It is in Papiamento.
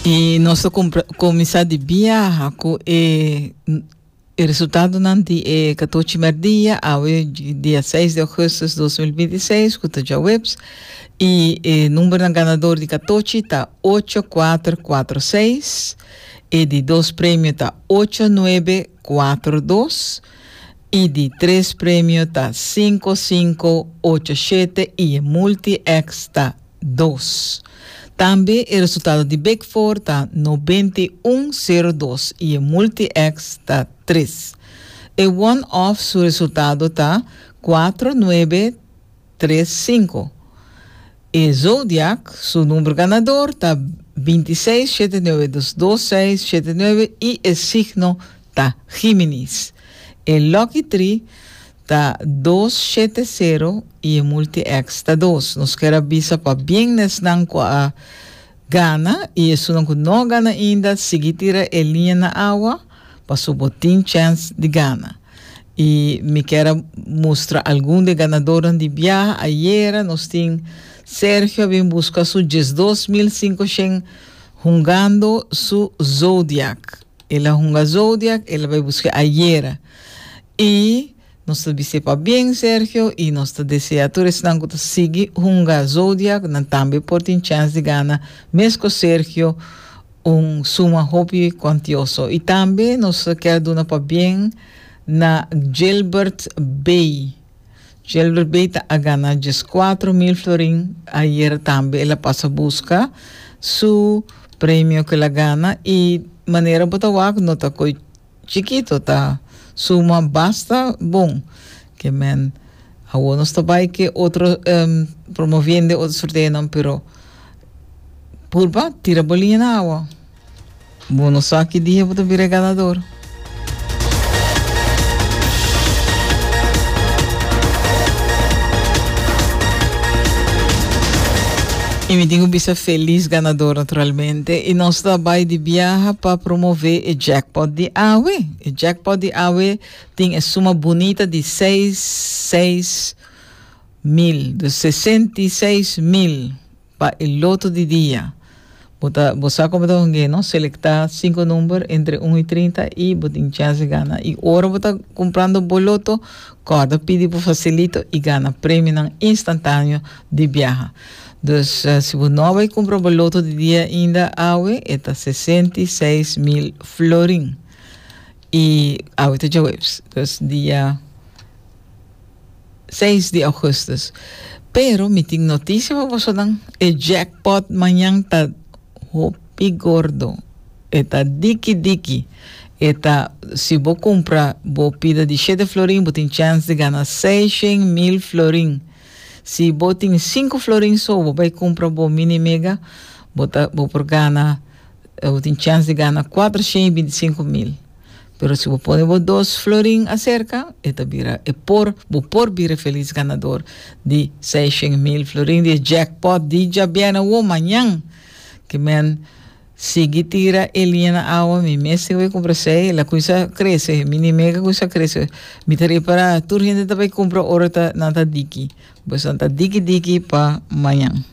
I nos ta kuminsá di biaha ku e, e resultadonan di e katochi mèrdia, awe dia 6 di augustus 2026, ku ta djaweps. I e numbernan ganador di katochi ta 8446, e di dos premio ta 8942, i di tres premio ta 5587 i e multi-X ta dos. Tambe e resultado di Big Four ta nobenta i un sero dos i e Multi-X ta tres. E One Off su resultado ta kuatro nuebe tres sinku. E Zodiac su number ganador ta binti i seis shete nuebe dos dos seis shete nuebe i e signo ta Giminis. E Lucky Three. Ta dos shete sero y e multi ex ta dos. Nos kier a bisa pa biennesnan cu a gana y esunnan cu no a gana ainda sigui tira e liña na awa pasobra bo tin chance di gana. Y mi kier a mustra algun di e ganadornan di biaha. Ayera nos tin Sergio a bin busca su diesdos mil sinkoshen hungando su zodiac. El a hunga zodiac, el a bay busca ayera. Y nos ta bis'é pabien Sergio y nos ta desea tur esnan cu ta sigui hunga Zodiac nan tambe por tin chens di gana mesco Sergio un suma hopi cuantioso. Y tambe nos ta kier duna pabien na Gilbert Bey. Gilbert Bey ta a gana diescuatro mil florin ayer tambe el a pasa busca su premio cu el a gana y manera bo ta wak no ta coi Chikito ta suma basta bon ke men. Awo nos ta bai ke otro promoviende otro sorteonan pero purba tira boliña na awa. Bo no sa ki dia bo ta bira e ganador. Y mi tin cu bisa feliz ganador naturalmente. Te i nos ta bai di biaha pa promove e jackpot di awe. E jackpot di awe tin e suma bunita di seis seis mil, dus sesenta i seis mil pa e loto di dia. Bo ta bo sa kon bo ta hongé, no? Selektá sinku number entre un i trinta i bo tin chèns di gana. I ora bo ta kumprando bo loto, kòrda pidi bo fasilito i gana premionan instantáneo di biaha. Dus si bo no bai kumpra bo loto di dia ainda awe e ta sesenta i seis mil florin. I awe ta djaweps, dus dia seis di augustus. Pero mi tin notisia pa bosonan, e jackpot mañan ta hopi gordo, e ta diki diki, e ta si bo kumpra bo pida di shete florin bo tin chance di gana seishen mil florin. Si bo tin sinku florin so bo bai kumpra bo mini mega bo ta bo por gana bo tin chèns di gana kuater shen i binti sinku mil pero si bo pone bo dos florin aserka e ta bira e por bo por bira e felis ganador di seis shen mil florin di e jèkpòt di djabièrnè wou mañan kimen Sigui tira e liña na awa mi mes tin bai kumpra sei la kui sa krese mi ni mega kui sa krese mi ta repará tur hende ta bai kumpra ora ta nan ta diki pues nan ta diki diki pa mañan.